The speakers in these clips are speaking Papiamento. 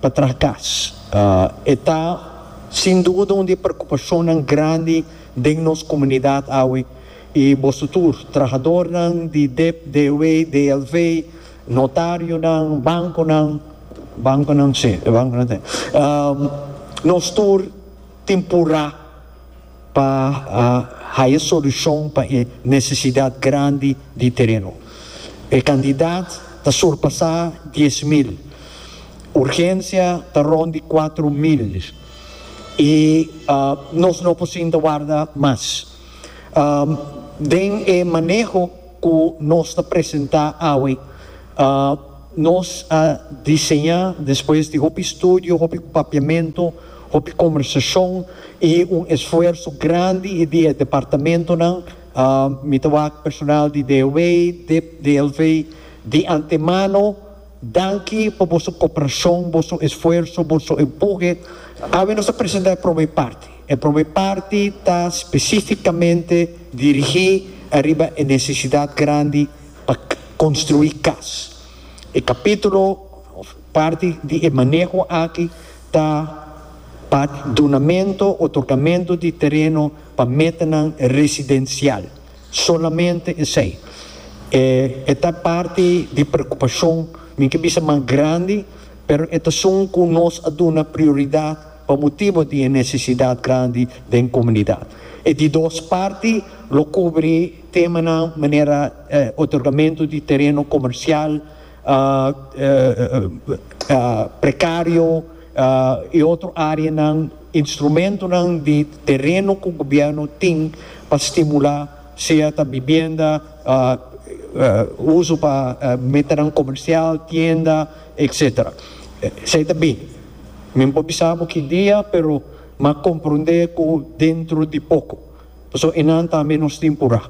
pa traha cas. E ta sin duda un di e preocupacionnan grandi den nos comunidad awe y boso tur, trahadornan di dep, DW, DLV, notarionan, banconan, banconan si, banconan ta, nos tur tin pura. pa haya solucion pa e necesidad grandi di tereno. E cantidad ta surpasa dies mil, urgencia ta rond di cuatro mil y nos no por sinta warda mas. Den e maneho cu nos ta presenta awe, nos a diseña despues di hopi studio, hopi papiamento, Hopi conversacion y un esfuerso grandi y di e departamentonan, mi ta wak personal di DOW, dip, DLV, di antemano danki pa boso cooperacion, boso esfuerso, boso empuje. Awe nos a presenta e prome parti. E prome parti ta specificamente dirigi ariba e necesidad grandi pa construi cas. E capitulo. Parti di e maneho aki ta pa dunamento, otorgamento, di tereno pa metanan residencial, solamente esey. E e ta parti di preocupacion, mi ke bisa mas grandi, pero e t'asun cu nos a duna prioridad pa motibo di e necesidad grandi den comunidad. E di dos parti lo cubri temanan manera otorgamento di tereno comercial, prekario i otro areanan instrumentonan di tereno ku gobièrnu tin pa stimulá sea ta bibienda, uso pa metanan komersial, tienda etsetera. Esei ta bin. Mi no por bisa bo ki dia pero m'a komprondé ku dentro di poko. Pasobra enan tambe nos tin por a.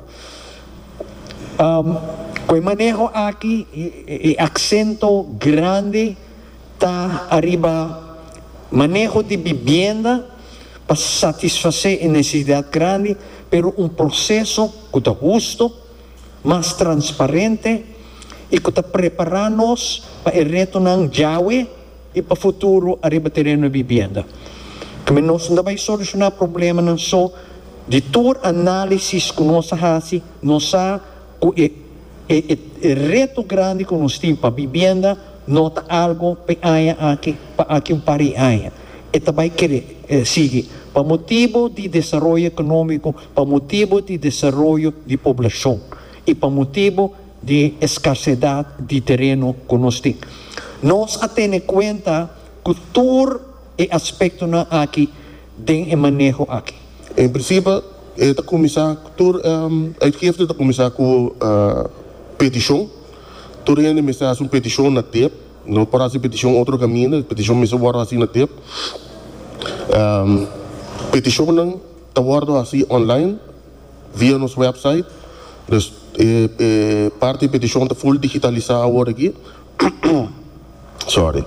Cu e maneho aki e acento grandi ta ariba maneho di bibienda pa satisface e necesidad grandi pero un proceso cu ta husto, mas transparente y cu ta prepara nos pa e retonan djawe. i pa futuro ariba tereno di bibienda. Tambe nos no ta bai solushoná problemanan so. Di tur análisis ku nos a hasi, nos sa ku e e reto grandi ku nos tin pa bibienda no ta algu pa e aña aki, pa aki un par di aña. E ta bai kere sigui pa motibu di desaroyo ekonómiko, pa motibu di desaroyo di poblashon i pa motibu. di e eskarsedad di tereno ku nos tin. Nos a tene kuenta ku tur e aspektonan aki den e maneho aki. En prinsipio e ta kuminsá, tur uitgifte ta kuminsá ku petishon. Tur hende mester hasi un petishon na tep. No por hasi petishon otro kaminda, e petishon mester wòrdu hasi na tep. Petishonnan ta wòrdu hasi online. Via nos website, dus e parti petishon ta full digitalisá awor aki, sorry,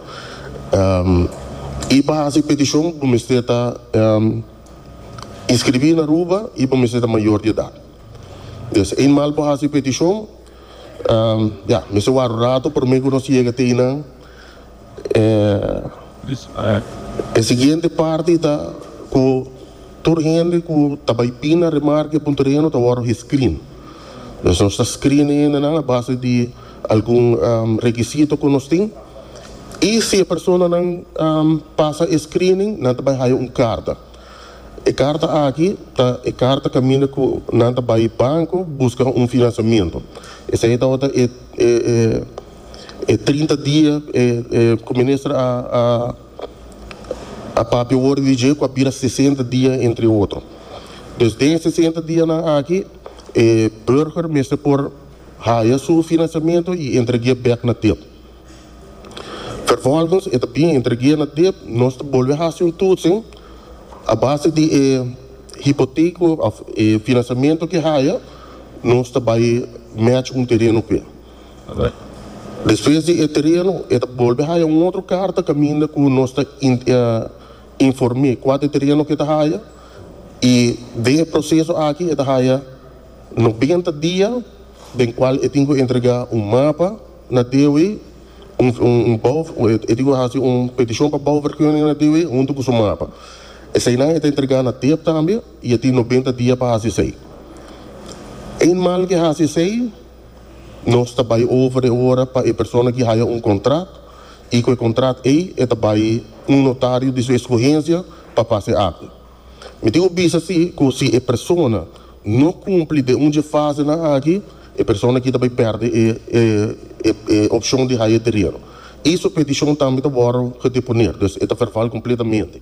i pa hasi petishon bo mester ta inskribí na Aruba i bo mester ta mayor di edat. Des eenmaal bo hasi petishon, ya mester ward un rato promé ku nos yega te einan, E siguiente parti ta cu tur hende cu ta bay pina remarca e puntodenan ta wordo gescreen. Pues nos ta screen e hendenan a base di algun requisito cu nos tin y si e personanan pasa e screening nan ta bay haya un carta. E carta aki ta e carta caminda cu nan ta bay banco busca un financiamento. Esey tawata e. E trinta dia ku minister a papia wor di dje ku a bira sesenta dia entre otro. Dus den e sesenta dianan aki e burger mester por haya su finansiamentu i entregu'é bèk na dip. Vervolgens e ta bin entregu'é na dip nos ta bolbe hasi un tutsing a base di e hipoteko òf e finansiamentu ku e haya nos ta bai mèch un tereno ku e. Despues di e tereno e ta bolbe haya un otro karta kaminda ku nos ta inform'é kua ta e tereno ku e ta haya i den e proseso aki e ta haya nobenta dia den kual e tin ku entregá un mapa na DOW un bou e tin ku hasi un petishon pa bouvergunning na DOW huntu ku su mapa esei nan e ta entregá na DEP tambe i e tin nobenta dia pa hasi esei eenmaal ke hasi esei. Nos ta bai over e ora pa e persona ki haya un kontrat i ku e kontrat ei e ta bai un notario di su eskuhensia pa fasi e akta. Mi tin ku bisa si ku si e persona no kumpli den un dje fasenan aki e persona aki ta bai pèrdè e opshon di haya e tereno i su petishon tambe ta wòrdu gedeponé, dus e ta verval kompletamente.